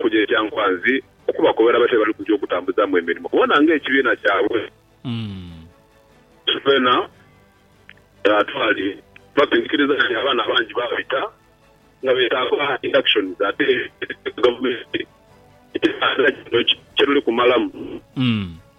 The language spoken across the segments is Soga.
Kuja ekya nkwanzi okubakobera batyo byebali kuja okutambuzaamu emirimo kubona nga ekibiina kyabwe kyonakyona twaali babindikiriza nti abaana abangi babita nga betaaga inductions ate ekyo gavumenti ekibiina kino kyeruli kumalamu.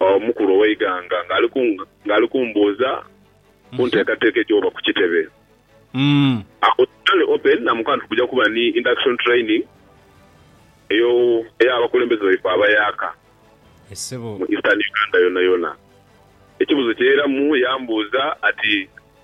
Omukulu ow'eighanga ng'ali kumbuuza ku nteekateeka egy'oba ku kitebe. Agho Charlie Oppen namukoba nti, Kuja kuba ni induction training ey'abakulembeze baife abayaaka mu Eastern Uganda yonayona. Ekibuuzo kye yairamu yambuuza ati.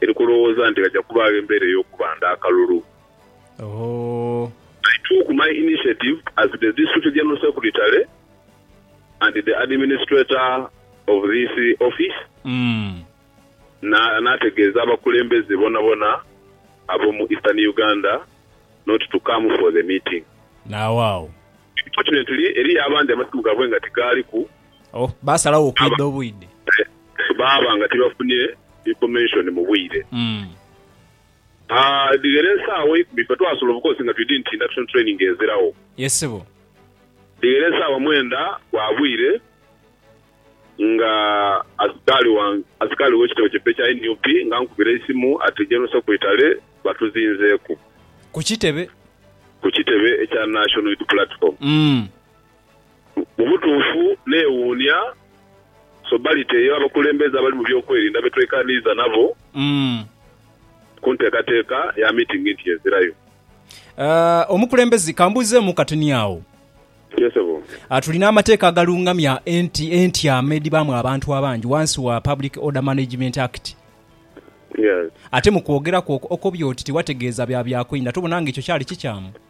Eri kulowooza nti ghaja kubaagho embeera ey'okubanda akalulu. Ooh. I took my initiative as the District General Secretary and the Administrator of this Office, na, naategeeza abakulembeze bonabona ab'omu Eastern Uganda not to come for the meeting. Naawaawo. Unfortunately, eriyo abandi amasimu gaabwe nga tigaaliku, Oh, baasalagho okwidha obwidhe. Baaba nga tibafunye information mu bwire. Mm. Aah, edhighera esaawa eikumi ffe twasula of course nga twidhi nti induction training eziragho. Yes ssebo. Edhighera esaawa mwenda gwa bwire nga asikaali wa, asikaali w'ekitebe kyaife ekya nup nga ankubira eisimu ati General Secretary batuzinzeeku. Ku kitebe? Ku kitebe ekya National Unity Platform. Mm. Mu butuufu neewuunia sobaliti eyo abakulembeze abali mu byokwerinda be twekaniiza nabo ku nteekateeka ya miitingi nti y'ezirayo. Omukulembeze, ka mbuuzeemu katini agho. Yee, ssebo. Tulina amateeka agalungamya entyama edhibaamu abantu abangi wansi wa Public Order Management Act. Yes. Ate mu kwogera kwo okobye oti tiwategeeza bya byakweinda, tobona nga ekyo kyali kikyamu?